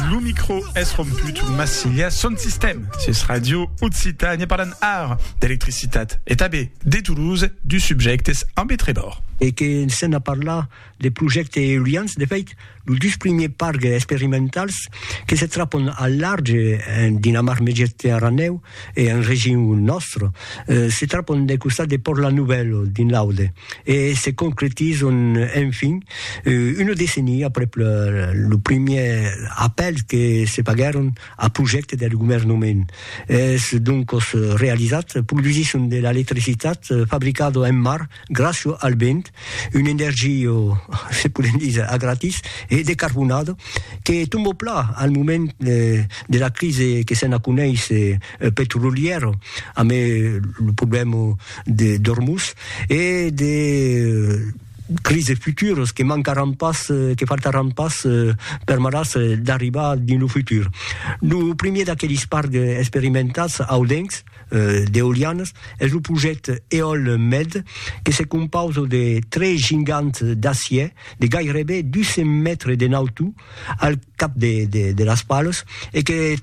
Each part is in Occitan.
Lo micro es romput, mas silha son sistèm sus Radio Occitània parlan ar d'electricitat e tanben de Toulouse, dus subjèctes amb e Trevor. E que s'en a parlar de projèctes eolians, de fèit, los dus primièrs parcs experimentals que se trapon al large en Dinamarc-Mègetge-Aranèu, e en region nòstre, se trapon del costat de Pòrt la Novèl dins l'Aude e se concretizon enfin una decenia aprèp lo primièr apèl que se faguèron a projècte del governament. Es doncos realizat, produsisson de l'electricitat fabricada en mar gràcio al vent, un energio, se podem díser, a gratis e decarbonado, que tombo pla al moment de la crise que se'n aconeis petrolièro, amb lo problèma d'Ormuz e de crises futuras que mancaràn pas, que faltaràn pas permetàs d'arribar dins lo futur. Lo primièr d'aquelis parcs experimentats audencs, d'eolianas es lo projècte Eolmed que se compausa de tres gigants d'acièr de gaireben 200 mètres de nautor al cap de las palas e que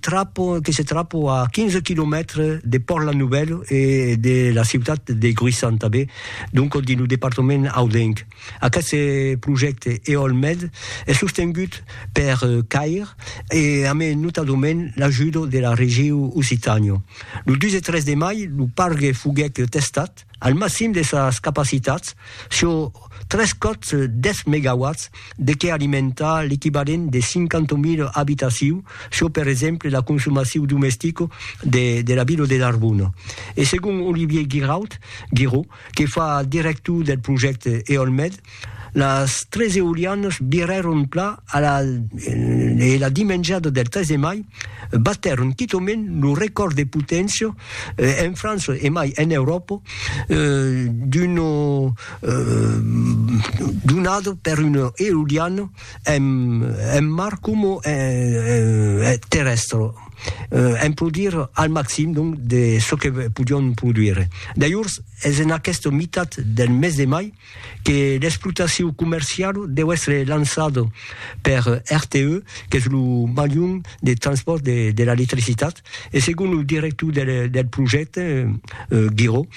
se trapa a 15 quilomètres de Pòrt-la Novèla e de la ciutat de Gruissan tanben, donc dins lo departament audenc. Aqueste projècte EOLMed es sostengut per CAIR e amé notadament l'ajudo de la Regiu Occitània. Lo 2 e 3 de mai lo pargue foguèc testat al maxim de sas capacitats sur tres còps 10 megawatts de qué alimentar l'equivalent de 50.000 abitacius sur per exemple la consomaciu domestica de la vila de Narbona. E segon Olivier Giraud, Giraud, que fa director del projècte EolMed, las tres eolianas virèron pla a la e la dimenjada del 3 de mai batèron quitament lo recòrd de poténcia en França e mai en Euròpa d'una donada per una eoliana en en mar coma en terrèstre, en produire al maxim donc de çò que podion produire. Dajors es en aquesta mitat del mes de mai que l'explotacion comerciala deu èstre lançada per RTE, qu'es lo malhum de transpòrt de l'electricitat, E segon lo director del del projècte, Guiraud,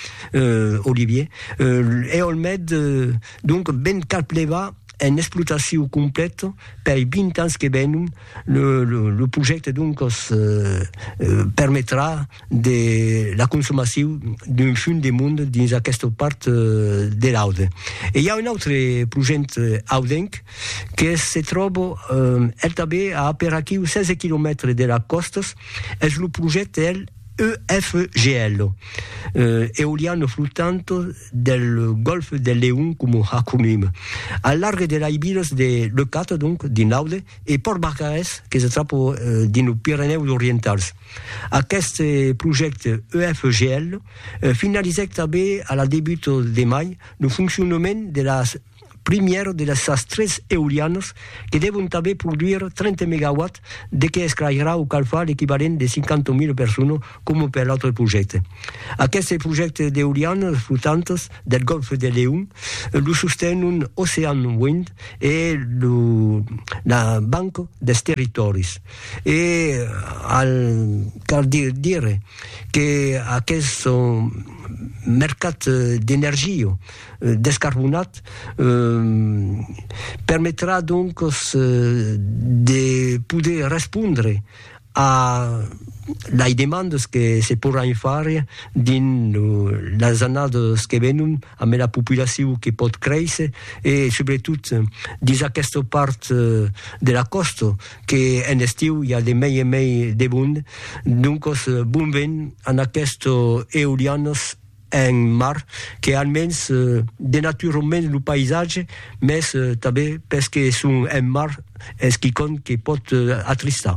Olivier, Eolmed donc ven cap levar en explotacion completa pei 20 ans que venon. Lo lo lo projècte donc os permetrà de la consomacion d'un fum de monde dins aquesta part de l'Aude. E i a un autre projècte audenc, que se tròba el tanben a aperaquiu 16 quilomètres de las còstas, es lo projècte el EFGL, Eoliano Flotante del Golfe del Leon coma acronim, al large de lei vilas de Leucate, donc dins l'Aude, e Pòrt Barcarès que se tròba dins los Pirenèus Orientals. Aqueste projècte EFGL finalizèc tanben a la debuta de mai lo foncionament de las primièr de las sas tres eolianas que devon tanben produir 30 megawatts de que esclairà o calfar l'equivalent de 50.000 personas coma per l'autre projècte. Aqueste projècte d'eolianas flotantas del Gòlf de Leon lo sostenon Ocean Wind e la Banca dels Territòris e al cal dire que aqueste mercat d'energia descarbonat permetrà donc de poder respondre a lei demandas que se porràn far dins las annadas que venon amb la populacion que pòt créisser e subretot dins aquesta part de la còsta que en estiu i a de mei en mei de mond. Doncas bon vent a aquestas eolianas. un mar que almens denatura un mens lo païsatge, mès tanben perque es un mar es quicòm que pòt atristar.